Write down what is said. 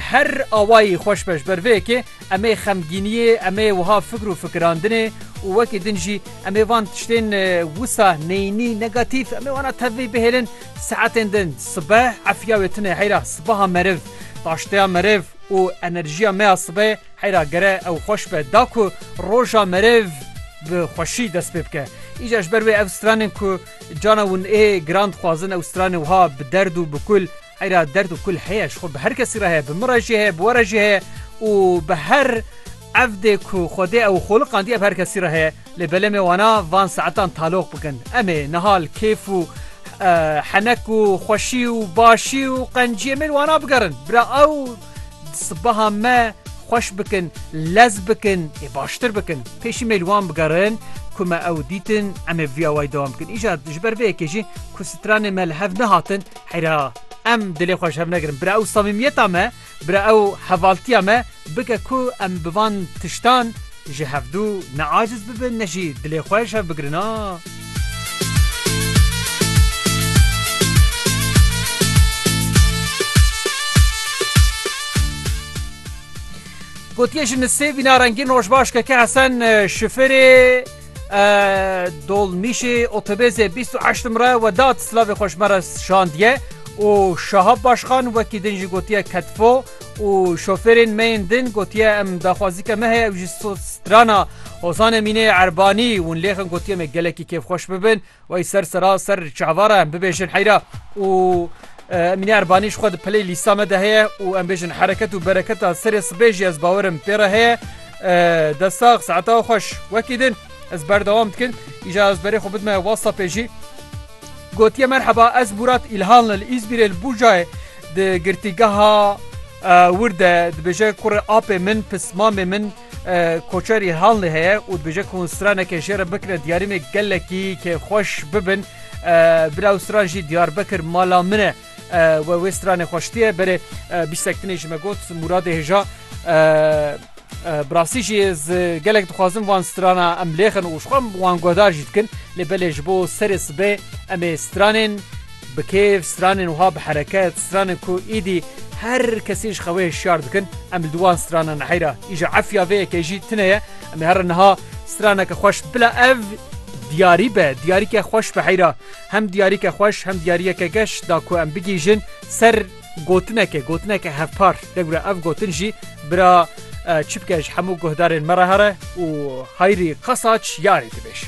Her awayî xweş be ji ber vê yekê em ê xemgîniyê, em ê wiha fikr û fikirandinê û wekî din jî em ê van tiştên wisa neyînî, negatîf em ê wana tevî bihêlin saetên din. Sibeh efiya wê tune heyra sibeha meriv, daşteya meriv û enerjiya me ya sibehê heyra gere ew xweş be da ku roja meriv bi xweşî dest pê bike. Îcar ji ber wê ev stranên ku cana wan ê giran dixwazin ew stranên wiha bi derd û bi kul, Eyra derd û kul heye ji xwe bi her kesî re heye bi min re jî heye bi we re jî heye û bi her evdê ku Xwedê ew xoliqandiye bi her kesî re heye lê belemê wana van saetan taloq bikin em ê niha li kêf û henek û xweşî û başî û qenciyê me li wana bigerin bira ew sibeha me xweş bikin lez bikin ê baştir bikin pêşî me li wan bigerin ku me ew dîtin em ê via wayî dewam bikin îcar ji ber vê yekê jî ku stranê me li hev nehatin Heyra em dilê xwe ji hev negirin. Bira ew samîmiyeta me, bira ew hevaltiya me bike ku em bi van tiştan ji hevdû ne aciz bibin ne jî dilê xwe ji hev bigirin a. Gotiye ji nisêbîna rengîn rojbaş keke Hesen Şifirê. Dolmîşê otobêsê bîst û heşt numre Wedat Silavê xweş me re şandiye û Şahap Başxan wekî din jî gotiye Ketfo û şofêrên me yên din gotiye em daxwazîke me heye ew jî strana Hozan Emînê Erbanî hûn lêxin gotiye me gelekî kêfxweş bibin. Wey ser sera ser çavara em bibêjin heyra û Emîne Erbanî ji xwe di pelê lîsta me de heye û em bêjin hereket û bereketa serê sibê jî ez bawerim pê re heye. Destax saeta xweş wekî din ez berdewam dikin îja ez berê xwe bidime WhatsAppê jî gotiye merheba ez Murat İlhanlı li İzmirê li Bucayê di girtîgeha wir de dibêje kurê apê min pis mamê min Koçerî Hanlê heye û dibêje ku straneke jê re bikire diyarîmê gelekî kê xweş bibin. Bila ew stran jî Diyarbekir mala min e we wê stranê xwe şitiye berê bîstek tinê ji me got Mûradê hêja Bi rastî jî ez gelek dixwazim van strana em lêxin û ji xwe wan guhdar jî dikin lê belê ji bo serê sibê em ê stranên Bi kêf stranên wiha bi hereket, stranên ku êdî her kesî ji xewê hişyar dikin, em li wan stranan heyra îja Efya vê yekê jî tune ye. Em ê here niha straneke xweş bila ev diyarî be, diyarîke xweş be heyra. Hem diyarîke xweş, hem diyarîyeke geş da ku em bigihîjin ser gotinekê, gotineke hevpar. Degwira ev gotin jî bira çi bike ji hemû guhdarên me re here û Hayrî Qasaç yarê dibêj.